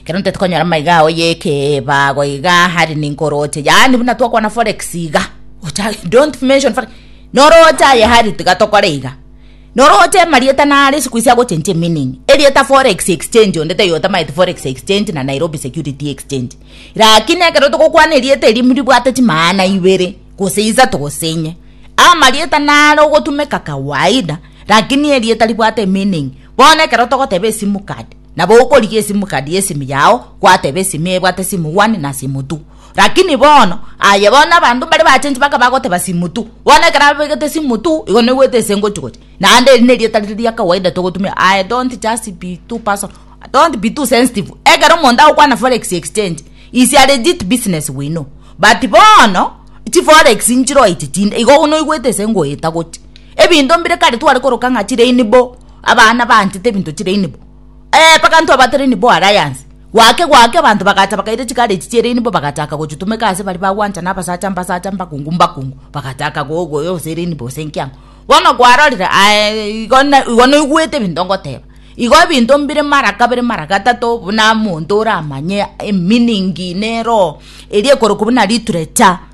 Kero nte tokonyora maiga ao yekebago iga hari ninkoroche yaani buna twakwana forex iga ocha don't mention forex noroche aye hari tiga tokore iga noroche amarieta nare siku isi agochencha emeaning erieta forex exchange onde taiyo otamaeti forex exchange na Nairobi security exchange lakini ekero togokwana erieta eri ribwate chimaana ibere gose isato gose inye amarieta nare ogotumeka kawaida lakini erieta ribwate emeaning Bono ekero togoteba esimu card, nabo okorigia esimu card y'esimu yao gwateba esimi ebwate simu one na simu two. Lakini bono, aye bono abanto mbare bachenchi baka bagoteba simu two. Bono ekero abegete simu two, igo noigwete ase ngochi gocha. Naende eri nerieta riri ria kawaida togotumia, I don't just be too personal, don't be too sensitive. Ekero omonto agokwana forex exchange, is a legit business we know. But bono, chiforex nchiroo echi chinde, igo noigwete ase ngoeta gocha. Ebinto mbire kare tware koroka ng'a chire inibo, abana baanchete ebinto chire inibo. Ee, mpaka intwe abatari inibo alliance. Gwake gwake abanto bagacha bakaira chigari echi chiere inibo bagachaka gochitumeka ase baria bagwanchana abasacha mbasacha mbakungu mbakungu, bagachaka gogoe gose ere inibo gose enkiang'o. Bono kwarorire aye igo na igo noigwete ebinto ngoteba. Igo ebinto mbire mara kabere mara gatato buna monto oramanye emeaning nero eria ekorokwa buna literature.